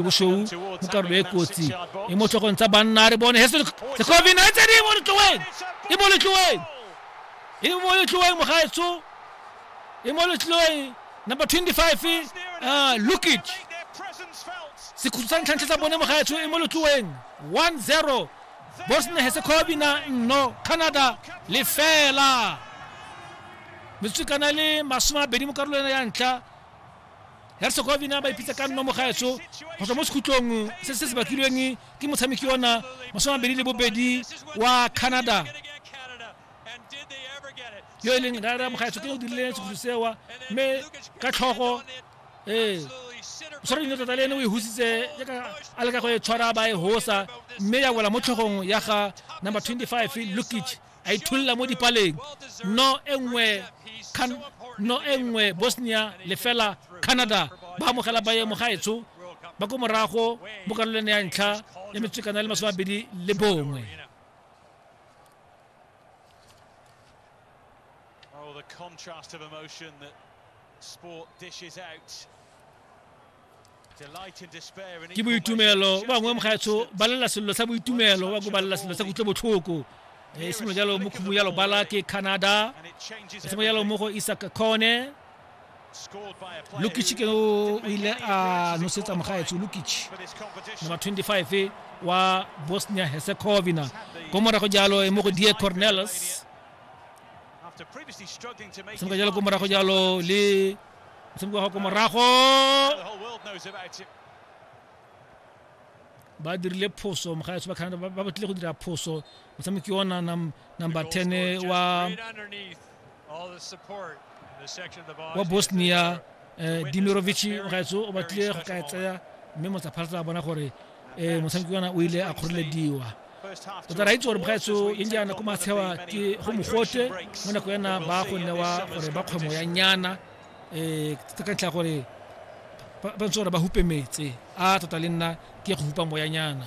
boshou mo karolo e kotsi e mo tlhogong tsa banna re bone heso sekovi na tse di mo letloeng e mo letloeng e mo letloeng mogaetsho e mo letloeng number 25 uh, lukit sekhutso sa ntlhantlha sa bone mogaetsho e mo letloeng 1-0 bosnia herzegovina nno canada lefela metsotso kana le masome a bedi mo karolong ya ntlha hersegovina ba ipitsa ka nnomo gaetsho go tswa mo sekhutlong se se se bakilweng ke motshameki ona masomabedi le bobedi wa canada yo e leng rara mogaetsho ke o dirile sekhutlho sewa mme ka tlhogo ee o tshwara dino tota le ene o e husitse jaaka a leka go e tshwara ba e hosa mme ya wela mo tlhogong ya ga number 25 lukic a ithulla mo dipaleng no e nngwe no e nngwe bosnia lefela canada ba amogela baemo gaetsho ba ko morago mo karolong ya ntlha ya metswekana le masome abedi le bongwe Oh, the contrast of emotion that sport dishes out ke boitumelo ba bangwe mogaetsho ba lela sello sa boitumelo ba ko ba lela sello sa kutlwe botlhoko e eh, sengwe jalo mo khumo ya lobala ke canada e sengwe jalo mo go isak kone lukic ke o ile a nosetsa mogaetsho lukic number 25 wa bosnia herzegovina ko morago jalo e mo go die cornelis sengwe jalo ko morago jalo le tshameka go ko morago ba dirile phoso mogaetso ba canada ba ba batlile go dira phoso motshameki ona nam- number 10 wa wa bosnia eh, dimirovic mogaetso o batlile go ka e tseya mme motsapharatla a bona gore um motshameki kana o ile a kgorelediwa o tla raitse gore bgaetso e njana ko matshewa ke go mogote mo nako yana ba go newa gore ba kgwemo ya nyana um ka ntlha gore ba ntse gore ba hupe metse a tota le nna ke go hupa moyanyana